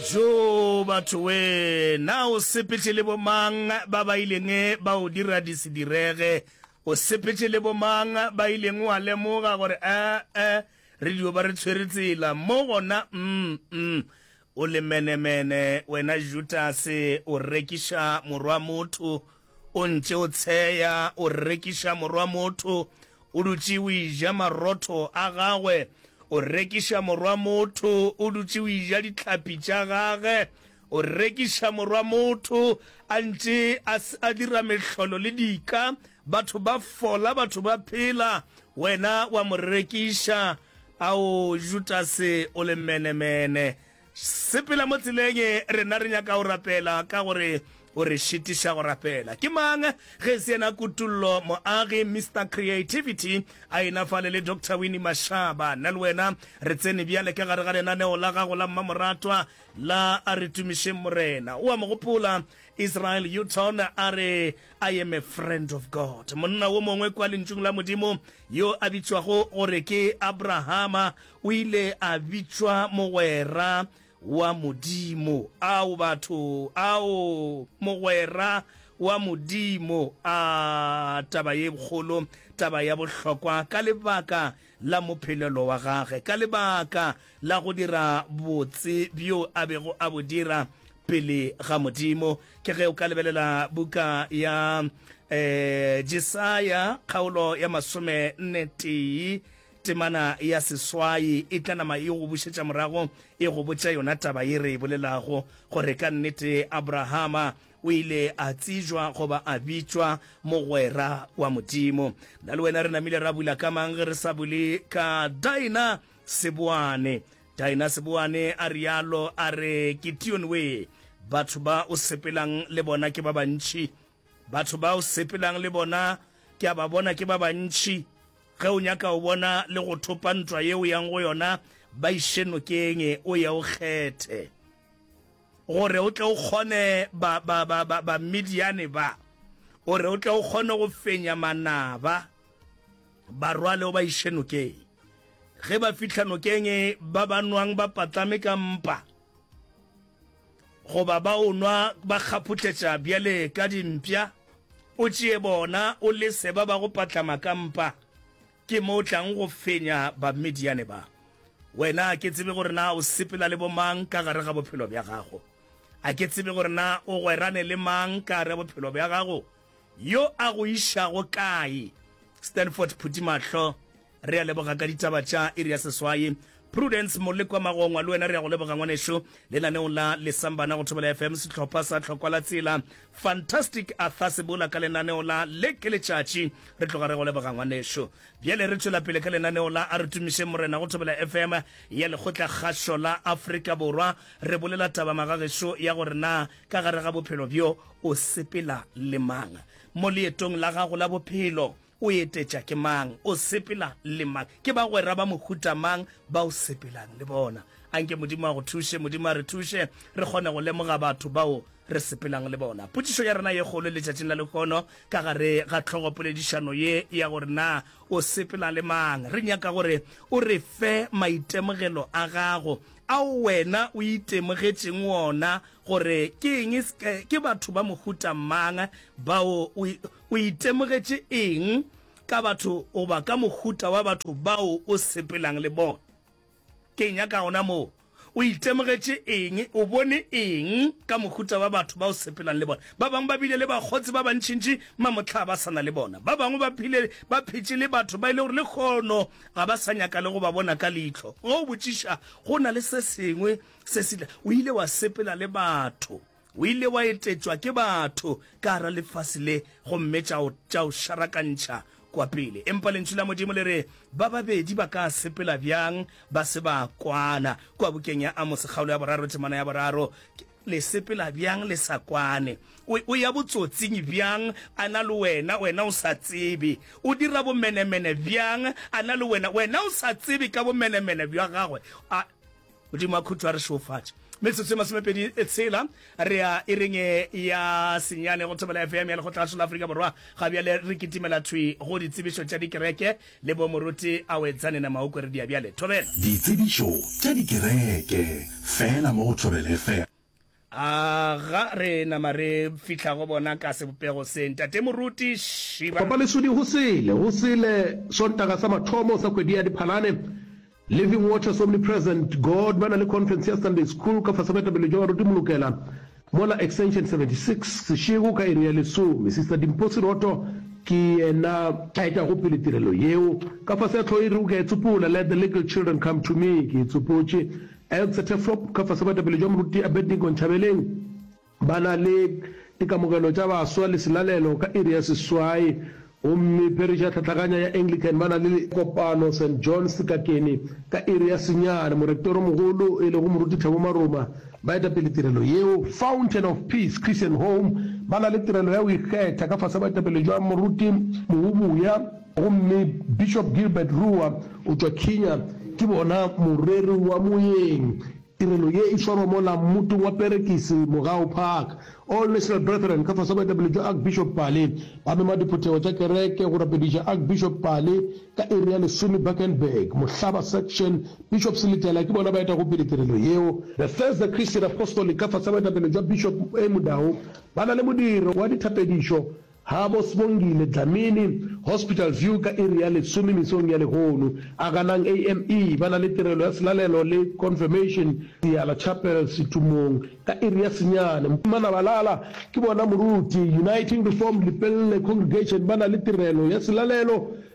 Tjo, batho we! Na o sepetše le bomang ba ba ileng ba o dira di se direge? O sepetše le bomang ba ileng wa lemoga gore, A-a, re dio ba re tshwere tsela mo gona? Um-um. O lemenemene, wena Judase, o rekiša Morwa-motho! O ntše o tsheya, o rekiša morwa motho, o dutše o eja marotho a gagwe, o rekiša morwa motho, o dutše o eja dihlapi tša gage, o rekiša morwa motho, a ntše a, a dira mehlolo le dika, batho ba fola, batho ba phela, wena wa mo rekiša. Ao, Judase, o le menemene! Sepela mo tseleng e, rena re nyaka go rapela ka gore o re šitiša go rapela. Ke mang ge e se yena Kutullo Moagi, Mister Creativity, a ena fale le Doctor Winnie Mashaba? Nna le wena re tsene bjale ka gare ga lenaneo la gago la mmamoratwa la A Re Tumišeng Morena. O a mo gopola Israel Houghton a re, I am a friend of God. Monna wo mongwe kwa Lentšung la Modimo yo a bitšwago gore ke Abrahama O ile a bitšwa mogwera wa Modimo. Ao, batho! Ao, mogwera wa Modimo! A, taba ye kgolo, taba ya bohlokwa, ka lebaka la mophelelo wa gage, ka lebaka la go dira botse bjo a bego a bo dira pele ga Modimo. Ke ge o ka lebelela buka ya um Jesaya, kgaolo ya masome nne tee. Temana ya seswai e tla nama e go bušetša morago e go botša yona taba ye re e bolelago, gore ka nnete Abrahama o ile a tsejwa goba a bitšwa mogwera wa Modimo. Na le wena re namile ra bula ka mang ge re sa bule ka Daina Seboane? Daina Seboane a rialo, a re, Ke Tionwee, batho ba o sepelang le bona ke ba bantši Batho ba o sepelang le bona ke a ba bona ke ba bantši. Ge o nyaka go bona le go thopa ntwa ye o yang go yona, ba iše nokeng o ye o kgethe, gore o tle o kgone Bamidiane ba, gore o tle o kgone go fenya manaba. Ba rwale o ba iše nokeng. Ge ba fihla nokeng, ba ba nwang ba patlame ka mpa. goba ba o nwa ba kgaphohletša bjale ka dimpša, o tšee bona o lese ba ba go patlama ka mpa, ke mo o tlago go fenya Bamidiane ba. Wena a ke tsebe gore na o sepela le bomang ka gare ga bophelo bja gago, a ke tsebe gore na o gwerane le mang ka gare ga bophelo bja gago, Yo a go išago kae? Stanford Phuthimahlo, Re a leboga ka ditaba tša iri ya seswai. Prudence Molekwa Magongwa, le wena re a go leboga ngwanešu. Lenaneong la Lesambana go Thobela FM, sehlopha sa Tlhokwa la Tsela. Fantastic Arthur Sebola ka lenaneo la Le ke Letšatši, re tloga re go leboga ngwanešu. Bjale re tšwela pele ka lenaneo la A re Tumišeng Morena go Thobela FM ya Lekgotlakgašo la Afrika Borwa. Re bolela taba magagešo ya gore na Ka gare ga bophelo bjo, o sepela le mang? Mo leetong la gago la bophelo, o etetša ke mang? O sepela le mang? Ke bagwera ba mohuta mang ba o sepelang le bona? Anke Modimo a go thuše. Modimo a re thuše re kgone go lemoga batho bao re sepelang le bona. Potšišo ya rena ye kgolo letšatšing la lehono ka gare ga tlhogopoledišano ye ya gore na o sepela le mang, re nyaka gore o re fe maitemogelo a gago ao wena o itemogetšeng wona gore ke eng, ke batho ba mohuta mang bao. O itemogetše eng ka batho goba ka mohuta wa batho bao o sepelang le bona? Ke nyaka gona moo. O itemogetše eng? O bone eng ka mohuta wa batho ba o sepelang le bona? Ba bangwe ba bile le bakgotsi ba bantšintši mamohlaa ba sa na le bona. Ba bangwe ba phile ba phetše le batho ba e le gore lekgono ga ba sa nyaka le go ba bona ka leihlo. Ge o botšiša, go na le se sengwe se se tla. O ile wa sepela le batho. O ile wa etetšwa ke batho ka gara lefase le, gomme tša o, tša o šarakantšha kwa pele. Empa Lentšu la Modimo le re, Ba babedi ba ka sepela bjang ba se ba kwana? Kua bukeng ya Amose, kgaolo ya boraro, temana ya boraro. Ke. Le sepela bjang le sa kwane? O, o ya botsotsing bjang a na le wena, wena o sa tsebe? O dira bomenemene bjang a na le wena, wena o sa tsebe ka bomenemene bja gagwe? A, Modimo a khutšo a re šeofatše. Metsotso e masomepedi e tshela re ya ireng e ya senyane go Thobela FM ya Lekgotla la Afrika Borwa. Ga bjale re kitimela thwi go ditsebišo tša dikereke Le bo moruti a o etsane na ma o kweredia bjale? Thobela. Ditsebišo tša dikereke feela mo go Thobela FM. A ga re nama re fihla go bona ka sebopego se, Ntate Moruti? Šiba. Papa Lesodi go sele, go sele Sontaga sa mathomo sa kgwedi ya Diphalane. Living Waters Omnipresent God ba na le conference ya Sunday School ka fase ga etapele jwa baruti molokela mola extension 76 sešego ka iri ya lesome. Sister Dimpho Seroto ke yena a etago pele tirelo yeo. Ka fase ga tlhogo e rego ke a e tsopola, Let the Little Children Come to Me, ke e tsopotše. Eltsete Flop ka fase ga boetapele jwa moruti Abednego Nchabeleng. Ba na le dikamogelo tša baswa le selalelo ka iri ya seswai, gomme pherišo ya tlhatlaganya ya Anglican ba na le kopano Saint John's Sekakeni ka iri ya senyane. Morektoromogolo, e lego Moruti Thabo Maruma, ba eta pele tirelo yeo. Fountain of Peace Christian Home ba na le tirelo ya go ikgetha ka fase ga boetapele bja Moruti Mohubuya, gomme Bishop Gilbert Ruwa o tšwa Kinya, ke bona moreri wa moeng Tirelo ye e swarwa mola mmutong wa Perekisi, Mogau Park. All National Brethren ka fase ga boetapele bja Archbishop Pale ba mema diphuthego tša kereke go rapediša Archbishop Pale ka iri ya lesome Bakenberg, Mohlaba Section. Bishop Seletela ke bona ba etago pele tirelo yeo. Bethesda Christian Apostolic ka fase ga boetapele bja Bishop A. Mudau ba na le modiro wa dithapedišo. Habo Sbongile Dlamini, Hospital View ka iri ya lesome mesong ya lehono. Aganang AME ba na le tirelo ya selalelo le Confirmation Seala Chapel Setumong ka iri ya senyane. Mpimana Balala ke bona moruti, Uniting Reformed Lepelle Congregation ba na le tirelo ya selalelo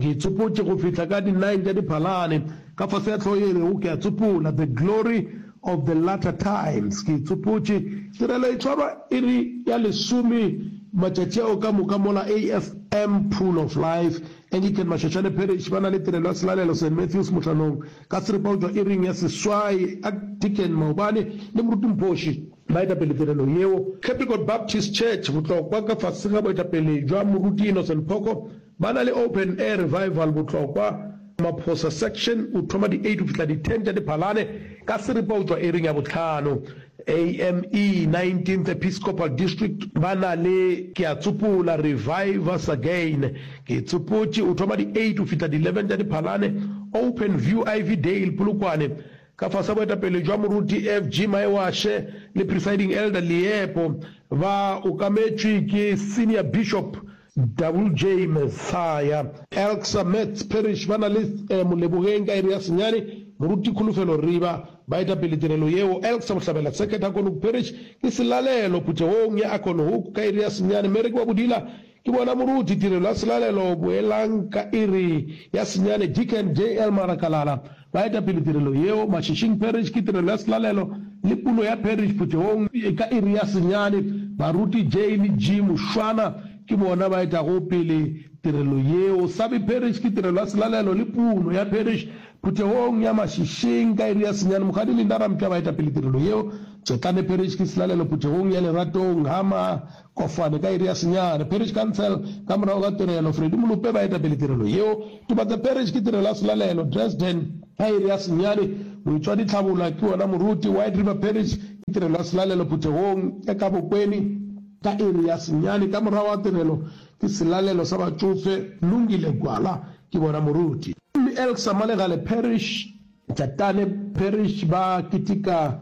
Ke tsopotše go fihla ka di nine tša Diphalane, ka fase ga hlogo ye e rego Ke a Tsopola, The Glory of the Latter Times. Ke tsopotše tirelo e tšwarwa iri ya lesome matšatši ao ka moka mola AFM Pool of Life, Anglican Mashoshane Parish, ba na le tirelo ya selalelo Saint Matthews Mohlanong, ka seripa go tšwa iring ya seswai, Archdeacon Maobane le Moruti Mphoshi ba etapele tirelo yeo. Capricorn Baptist Church, Botlokwa, ka fase ga boetapele bja Moruti Innocent Phoko, Ba na le Open Air Revival Botlokwa, Maphosa Section o thoma di 8 go fihla di 10 tša Diphalane ka seripa o tšwa eiring ya bohlano. AME 19th Episcopal District ba na le Ke a Tsopola Revive Us Again, Ke Tsopotše o thoma di 8 go fihla di 11 tša Diphalane. Open View Ivy Dale Polokwane ka fase ga boetapele bja Moruti FG Maewashe le Presiding Elder Liepo ba okametšwe ke Senior Bishop, Double J Methaya, Elksa Metz Parish ba na le e Molebogeng ka iri ya senyane, Moruti Kholofelo Riba, baetapele tirelo yeo, Elksa Bohlabela Second Akonoku Parish ke selalelo phuthegong ya Akonohoku ka iri ya senyane, Mary ke wa Bodila ke bona moruti tirelo ya selalelo boelang ka iri ya senyane, Deacon JL Marakalala, Ba eta pele tirelo yeo. Mašešing Parish ke tirelo ya selalelo le pulo ya Parish phuthegong. Ka iri ya senyane, baruti J le G Mushwana ke bona ba etago pele tirelo yeo. Sabi Parish ke tirelo ya selalelo le pulo ya Parish phuthegong ya Mašešing ka iri ya senyane. Mokgadi Linda Ramtla ba eta pele tirelo yeo. Tšetlane Parish ke selalelo phuthegong ya Leratong, Hamar, Kofane ka iri ya senyane. Parish Council Ka morago ga tirelo, Freddie Molope ba etapele tirelo yeo. Tobatse Parish ke tirelo ya selalelo. Dresden Ka iri ya senyane. Moitšwadi Tlhabola ke wona moruti. White River Parish ke tirelo ya selalelo phuthegong ya ka Bokweni. Ka iri ya senyane. Ka morago ga tirelo, ke selalelo sa batšofe. Lungile Gwala ke bona moruti. Mme Elksa Malegale Parish. Tšatane Parish ba kitika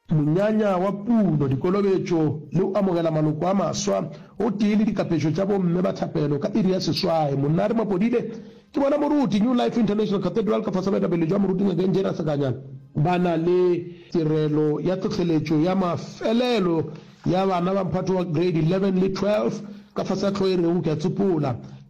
Monyanya wa puno, dikolobetšo le go amogela maloko a maswa gotee le dikapešo tša bomme ba thapelo ka iri ya seswai. Monare Mapodile ke bona moruti New Life International Cathedral ka fase baetapele jwa moruti Ngakeng Jane Asakanya ba na le tirelo ya tlhohleletšo ya mafelelo ya bana ba mphato wa grade 11 le 12 ka fase ga tlhogo e rego Ke a Tsopola.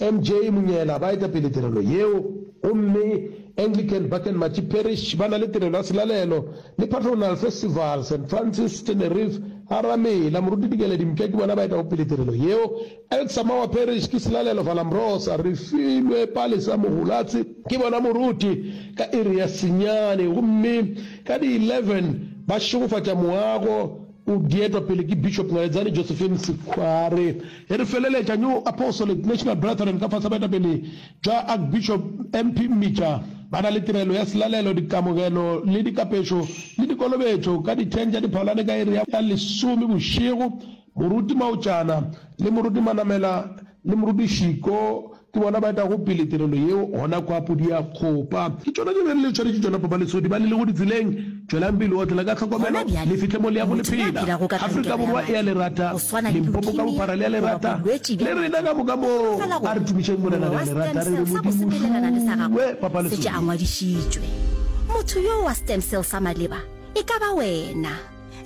MJ Monyela ba eta pele tirelo yeo, gomme Anglican Bakenmachi Parish ba na le tirelo ya selalelo le Patronal Festival. Saint Francis, Tenerife, a Ramela, Moruti Dikele Dimka ke bona ba etago pele tirelo yeo. Elk Samawa Parish ke selalelo Valambrosa, Refilwe Palesa Mohulatse, ke bona Moruti ka iri ya senyane gomme ka di 11 ba šegofatša moago O dietwa pele ke Bishop Naledzani Josephine Sikhware. E re feleletša New Apostolic National Brethren ka fase baetapele bja Archbishop MP Mmica ba na le tirelo ya selalelo, dikamogelo le dikapešo le dikolobetšo ka di 10 tša diphalane ka iri ya lesome bošego. Moruti Maotšana le Moruti Manamela le Moruti Shiko ke bona ba etago pele tirelo yeo gona kwa Podiakgopa. Ke tšona tše be le tshwaretše tšona Papa Lesodi ba le lego ditseleng. Tšwelang pele go otlela ka tlhokomelo le fihle mo le yago le phela. Afrika Borwa e a le rata, Limpopo ka bophara le a le rata, le rena ka moka mo a re tumišeng Morena re a le rata re re Modimo šuwe Papa Lesodi.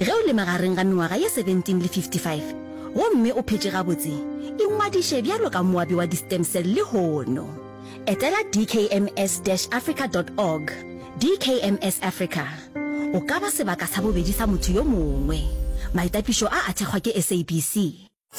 Ge o le magareng ga mengwaga ye 17 le 55 gomme o phetše gabotse, ingwadiše bjalo ka moabi wa di-stem cell lehono. Etela dkms-africa dot org, DKMS Africa. O ka ba sebaka sa bobedi sa motho yo mongwe. Maitapišo a a thekgwa ke SABC.